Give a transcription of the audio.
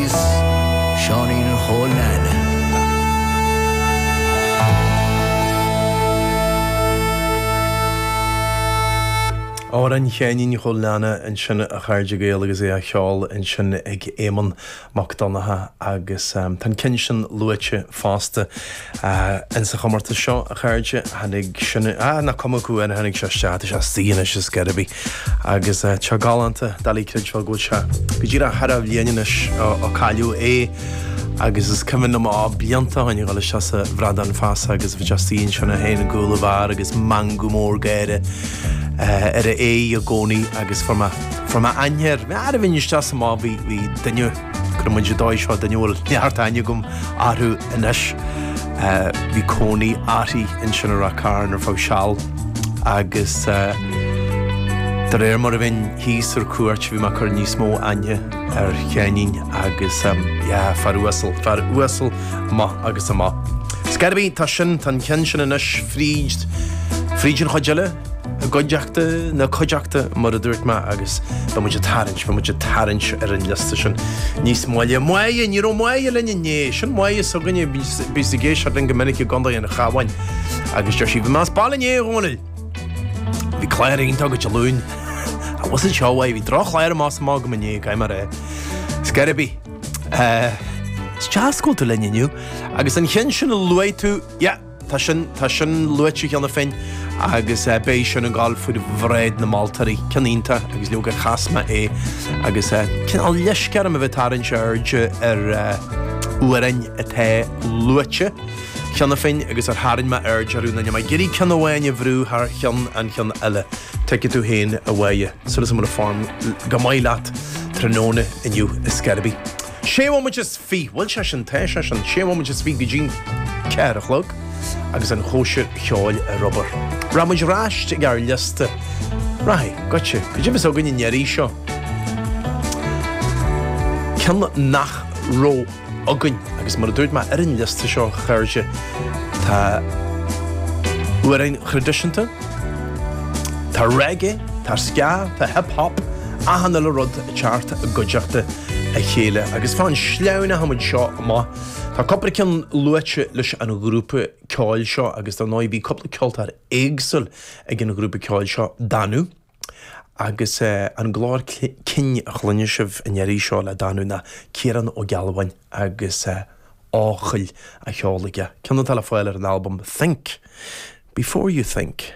Is Seáinín Chóil Neaine. Amhrán Sheáinín Chóil Neaine ansin a chairde Gael agus é á cheol ansin ag Éamonn Mac Donnacha agus tá an ceann sin luaite fosta. Ins an chomórtas seo, a chairde, tháinig sin, ah, nach cuma acu, an tháinig sé isteach, tá sé istigh anois, ar scor ar bith. Agus tá galánta, doiligh a chreidbheáil go bhfuil sé go díreach thar a bhliain anois ó cailleadh é agus is cuimhin liom á, blianta ó shin, a dhul isteach sa Bhradán Feasa agus bhí sé istigh ansin i gcúl an bheáir agus meangadh mór gáire ar a aghaidh i gcónaí agus fuair mé, fuair mé aithne air, mé araimhe isteach sa mbád, bhí, bhí duine, Cuirfidh muid an dóigh seo duine a bhfuil neart aithne agam orthu anois. Bhí cónaí uirthi ansin i Ráth Cairn ar feadh seal agus de réir mar a bhínn thíos ar cuairt bhí mé ag cur níos mó aithne ar Sheáinín agus yeah fear uasal, fear uasal amach agus amach. Ar scor ar bith, tá sin, tá an ceann sin anois fríd, fríd an chuid eile. I gcuideachta na cuideachta, mar a dúirt mé, agus beidh muid ag tarraingt, beidh muid ag tarraingt ar an liosta sin níos moille. Máire, ní raibh Máire linn inné, sin Máire s'againne, a bíos ag éisteacht linn go minic i gContae an Chabháin agus deir sí, 'Bhí mé as baile inné, a Dhónaill. Bhí clár iontach agat Dé Luain. I wasn't sure why, bhí droch-chlár amach is amach agam inné, cad é mar é? Ar scor ar bith. Is deas go bhfuil tú linn inniu agus an ceann sin a luaigh tú, yeah! Tá sin, tá sin luaite cheana féin agus beidh sin ag dul faoi bhráid na moltóirí, ceann iontach agus leoga chas mé é agus cineál leisce orm a bheith ag tarraingt airde ar amhráin atá luaite cheana féin agus ar tharraing mé aird orthu nó níl mé ag iarraidh ceann amháin a bhrú thar cheann an cheann eile. Tuigfidh tú féin a Mháire súil go bhfuil an form go maith leat tráthnóna inniu ar scor ar bith. Sé nóiméad is fiche, bhuel, sé sin, tá sé sin, sé nóiméad is fiche go dtí'n ceathair a chlog agus an chóisir cheoil ar obair. Rachaidh muid aríst ag ár liosta. Rachaidh, goitse, cad é a bheas againn an iarraidh seo ceann nach raibh againn agus mar a dúirt mé ar an liosta seo a chairde, tá amhráin thraidisiúnta, tá reggae, tá ska, tá hip hop, achan uile rud ag teacht i gcuideachta a chéile agus fan go sleamhnóidh muid seo amach. Tá cúpla ceann luaite leis an ghrúpa ceoil seo agus dar ndóigh bhí cúpla ceoltóir éagsúil ag an ghrúpa ceoil seo, Danú agus an glór cinn a chluineann sibh an iarraidh seo le Danú ná Ciarán Ó Gealbháin agus Eochaill á cheol aige, ceann atá le fáil ar an albam Think Before You Think.